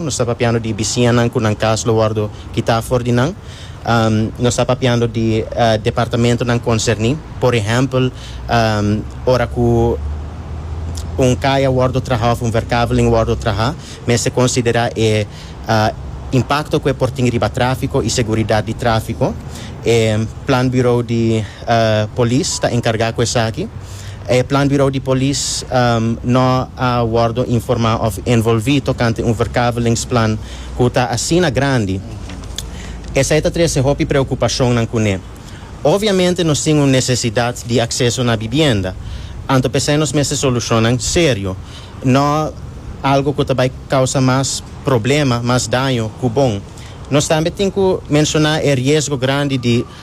Nos ta papiando di bisiñanan ku nan kas lo wòrdu kitá afor di nan. Nos ta papiando di departamentunan konserní. Por ehèmpel, ora ku un kaya wòrdu trahá òf un verkaveling wòrdu trahá, mester konsiderá e impakto ku e por tin riba tráfiko i seguridat di tráfiko. E Plan Bureau di Polis ta enkargá ku esaki. E Planbureau di Polis no a wordo informa of envolvi tocante un verkavelingsplan cu ta asina grandi. Esai ta trece hopi preocupacionnan cune. Obviamente nos tin un necesidad di acceso na bibienda, anto p'esai nos mester solucionnan serio, no algo cu ta bay causa mas problema, mas daño cu bon. Nos tambe tin cu menciona e riesgo grandi di.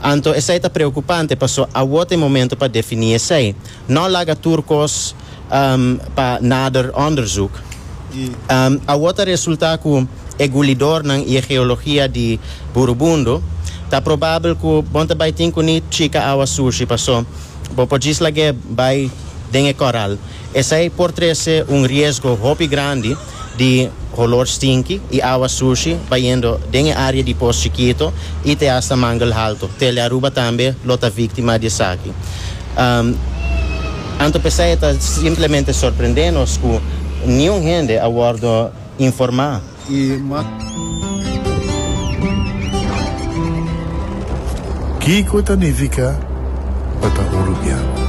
Anto esei ta preokupante paso awor ta e momento pa definí esei. Nò laga tur kos pa nader onderzoek. Awor ta resultá ku e gulidornan i e geologia di Burubundo ta probabel ku bon ta bai tin ku ni chika awa sushi paso bo por djis lag'é bai den e kòral. Esei por trese un riesgo hopi grandi. di holor stinki y awa sushi bayendo den e area di Pos Chikito y te hasta Mangle Halto. Tele Aruba tambe lo ta victima di esaki. Anto p'esai e ta simplemente sorprende nos cu niun hende a wordo informa. Y mas. Kico ta nifica pa ta un rubian?